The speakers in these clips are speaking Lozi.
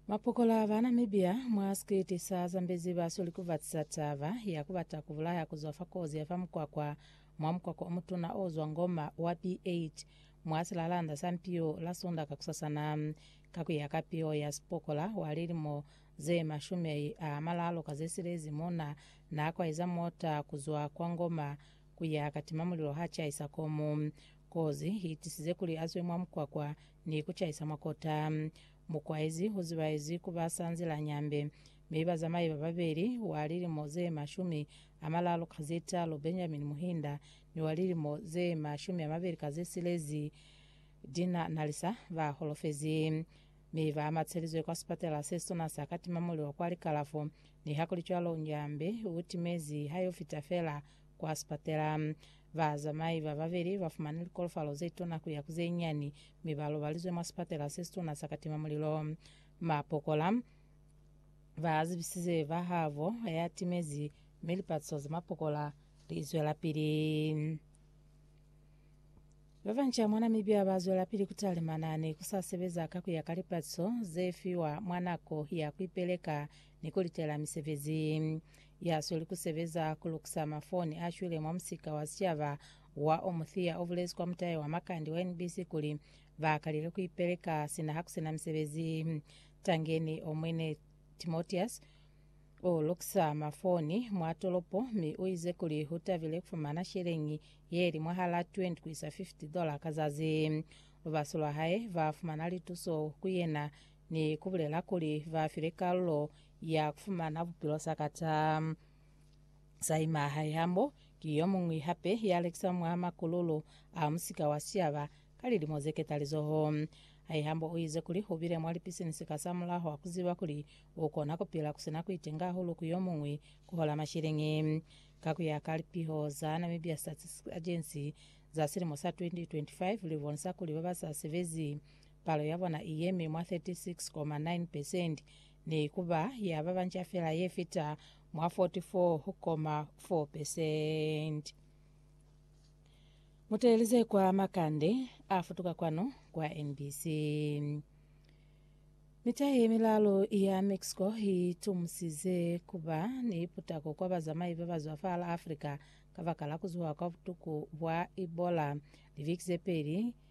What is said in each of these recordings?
Mapokola ba Namibia mwa sikiliti sa Zambezi ba soli ku batisa taba ya ku bata ku bulaya ku zwa fa kozi ya fa mukwakwa mwa mukwakwa o mutuna o zwa Ngoma wa B8 mwa silalanda sa Mpiyo la Sunda kakusasana. Ka ku ya ka piho ya sipokola wa lilimo ze mashumi a malalo ka ze silezi mona na kwaiza mota ku zwa kwa Ngoma ku ya katima mulilo ha caisa komu. Kozi i tisize kuli a zwe mwa mukwakwa ni ku caisa mwa kota. Mu kwaezi u zibaezi ku ba sa nzila nyambe, mi bazamai ba babeli, wa lilimo ze mashumi a malalu ka ze talu Benjamin Muhinda ni wa lilimo ze mashumi a mabeli ka ze silezi Dinah Nalisa, ba holofezi, mi ba amatselizwe kwa sipatela se situna sa Katima Mulilo kwa likalafo. Nihakulicwalo, nyambe u timezi ha y'o fita fela Kwa sipatela, bazamai ba babeli ba fumani likolofalo ze tona ku ya ku ze nyani mi ba lobalizwe mwa sipatela se situna sa katima mulilo. Mapokola ba zibisize ba habo ya timezi mi lipatiso za mapokola li zwelapili. Ba banca mwa Namibia ba zwelapili ku talimana ni ku sa sebeza ka ku ya ka lipatiso ze fiwa mwa nako ya ku ipeleka ni ku litela misebezi. ya sweli ku sebeza ku lukusa mafoni a shwile mwa musika wa sicaba wa Omuthia o bulezi kwa mutahe wa Makande wa NBC kuli, Ba kalile ku ipeleka sina ha ku si na misebezi. Tangeni o mwine Timotius u lukusa mafoni mwa tolopo mi u ize kuli u tabile ku fumana sheleñi ye li mwahal'a 20 ku isa 50 dola ka zazi. Lubaso lwa hae ba fumana lituso ku yena Ni kubulela kuli ba file kalulo ya kufumana bupilo sakata. Saima Haihamo ki yomuñwi hape ya lekiswa mwa makululu a musika wa sicaba ka lilimo ze ketalizoho. Haihamo u ize kuli ubile mwa lipisinisi ka sa mulaho a kuziba kuli ukona kupila kusina kuitenga hahulu ku yomuñwi kuhola mashiliñi. Ka kuya ka lipiho za Namibia Statistics Agency za silimo sa 2025, libonisa kuli babasa sebezi Palo ya bona i yemi mwa 36.9 pesenti, ne i ku ba ya ba banca fela ye fita mwa 44.4 pesenti. Mu teeleze kwa makande a futuka kwanu kwa NBC. Mita ye milalu ya Mexico i tumusize ku ba ni putako kwa bazamai ba ba zwa fa la Africa kabakala ku zuha kwa butuku bwa Ebola. Liviki ze peli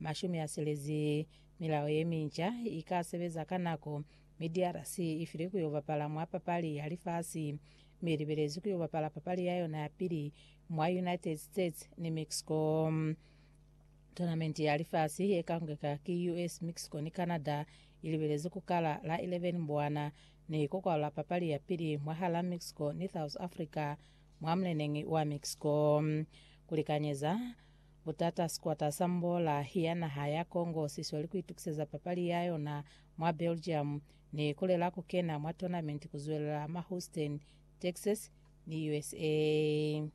Mashumi a silezi, Milao ye minca i ka sebeza ka nako, mi DRC i filwe ku yo bapala mwa papali ya lifasi, mi i libelezwi ku yo bapala papali ya yona ya pili mwa United States ni Mexico. Tonamenti ya lifasi ye ka kongeka ki US, Mexico ni Canada i libelezwi ku kala la 11 Mbwana, ni ku kwalula papali ya pili mwahal'a Mexico ni South Africa mwa muleneñi wa Mexico. Ku likanyeza. Butata, Sikwata sa Mbola ya naha ya Congo si sweli ku itukiseza papali ya yona mwa Belgium ni ku lela ku kena mwa tournament ku zwelela mwa Houston, Texas ni USA.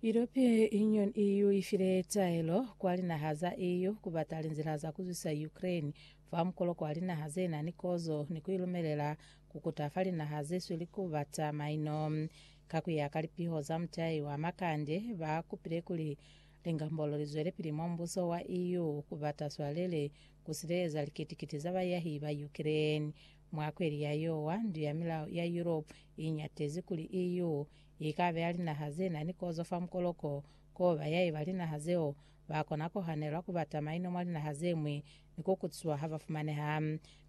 European Union, EU, i file taelo kwa linaha za EU ku bata linzila za ku zwisa Ukraine fa mukolo kwa linaha ze na ni kozo ni ku i lumelela ku kuta fa linaha ze sweli ku bata maino. Ka ku ya ka lipiho za mutai wa makande, ba kupile kuli lingambolo li zwelepili mwa Mbuso wa EU ku bata swalele ku sileleza likiti-kiti za bayahi ba Ukraine. Mwa kweli ya Yowa, Ndu ya Milao ya Europe i ñatezi kuli EU i ka beya linaha ze na ni kozo fa mukoloko k'o bayahi ba linaha zeo ba kona ku hanelwa ku bata maino mwa linaha ze ñwi ni ku kutiswa ha ba fumaneha.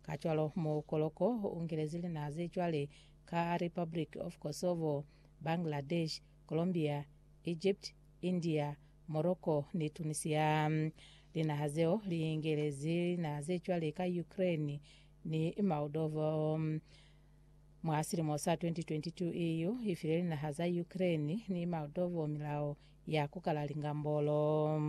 Kacwalo, mukoloko u ngilezi linaha ze cwale ka Republic of Kosovo, Bangladesh, Colombia, Egypt, India, Morocco ni Tunisia. Linaha zeo li ingelezi linaha ze cwale ka Ukraine ni Moldova. Mwa silimo sa 2022, EU i file linaha za Ukraine ni Moldova milao ya ku kala lingambolo.